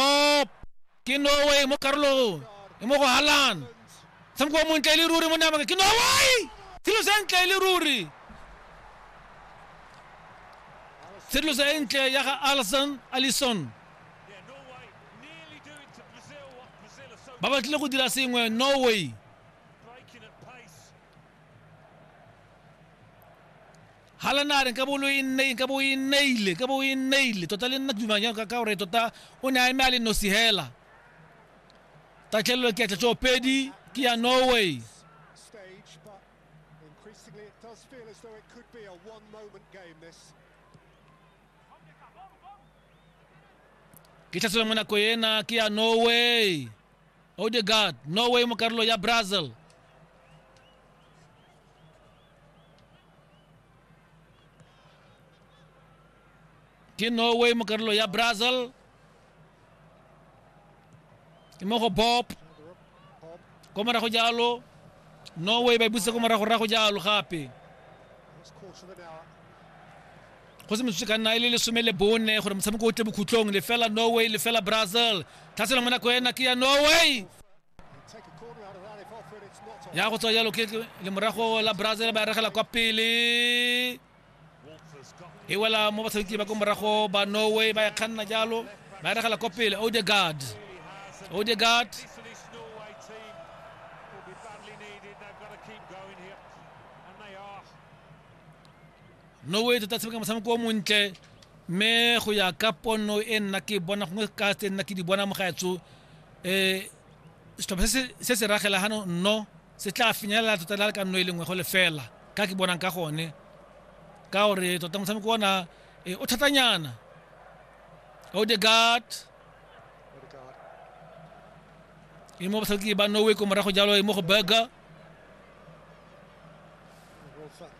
Up! ke norway mo karolong e mo go halan tshameko wa montle e le ruri mo namaka ke norway tshedilo sa ntle e le ruri tshedilo sa e ntle ya ga alison alison ba batlile go dira sengwe norway Hala na re, Nkabo lo e nne, nkabo o e nneile, nkabo o e nneile. Tota le nna ke dumang jalo ka, ka gore tota o ne a eme a le nosi hela. Tatlhelelo ke ya tšatšopedi, ke ya Norway. Ke tlhatselo mo nako ena, ke ya Norway. Odegaard, Norway mo karolo ya Brazil. ke norway mo karolo ya brazil ke mo go bob ko morago jalo norway ba e busa ko morago rago jalo gape go se metsotso ka nna e le lesome le bone gore motshameko o tle bokhutlong lefela norway lefela brazil tlhaselang mo nako ena ke ya norway ya go tswa jalo ke le morago la brazil ba regela kwa pele e wela mo batshameki ba ko morago ba norway ba ya kganna jalo ba regela kwa pele odegard odegard noe tota tshameka motshameko o montle mme go ya ka pono e nna ke bona gongwe ka tse nna ke di bona mogaetso um setlhopha se se ragela gano nno se tla finyelela tota la le ka nno e lengwe go lefela ka ke bonang ka gone ka gore tota motshameko ona eh, o thatanyana odegard e mo batlhaki ba norway ko morago jalo e mo go burger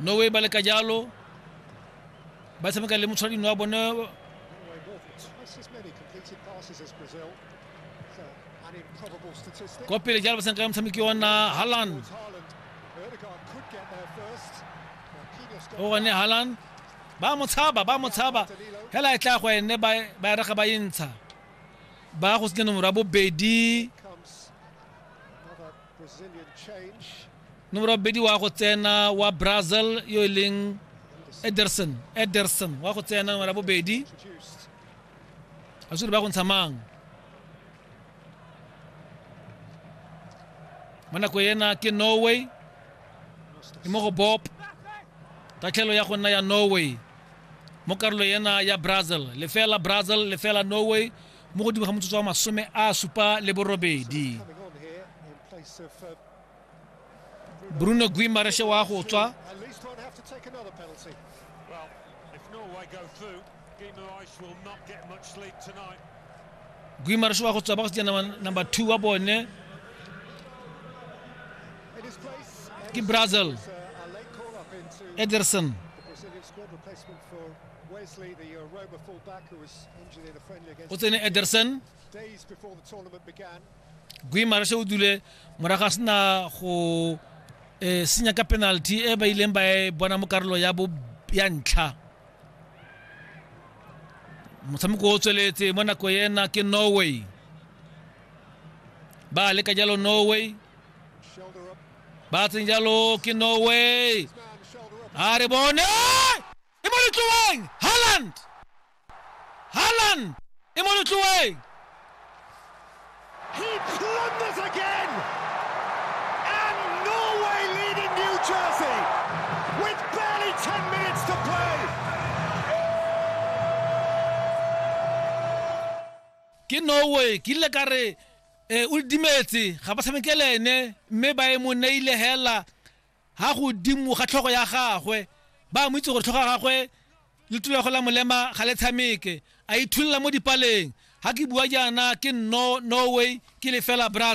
norway ba leka jalo ba tshameka le motshwaradino wa bone kwa pele jalo ba tshameka le motshameki ona halland o gone halland ba mo tshaba ba mo tshaba hela e tla go ene ba ba e rega ba e ntsha ba go senya nomoro ya bobedi nomoro ya bobedi wa go tsena wa brazil yo e leng ederson ederson wa go tsena nomoro ya bobedi a sure ba go ntsha mang mo nako ena ke norway e mo go bop tatlhelo ya go nna ya norway mo karolo ena ya brazil lefela brazil lefela norway mo godimo ga motsotso wa masome a supa le borobedi bruno guimareshe wa go tswa guimareshe wa go tswa ba go tsena number two wa bone ke brazil ederson o tsene ederson guimaras o dule morago a sena go um senya ka penalty e ba ileng ba e bona mo karolo ya ntlha motshameko o tsweletse mo nako ena ke norway ba leka jalo norway ba tseng jalo ke norway a re bone e mo letloeng Haaland Haaland e mo letloeng He plunders again and Norway leading New Jersey with barely 10 minutes to play ke Norway ke ile ka re eh, o dimetse ga ba tshamekele ene mme ba e mo neile hela ha godimo ga tlhogo ya gagwe ba mo itse gore tlhogo ya gagwe le tulo ya go la molema ga le tshameke a ithulela mo dipaleng ha ke bua jaana ke no norway ke lefela brazza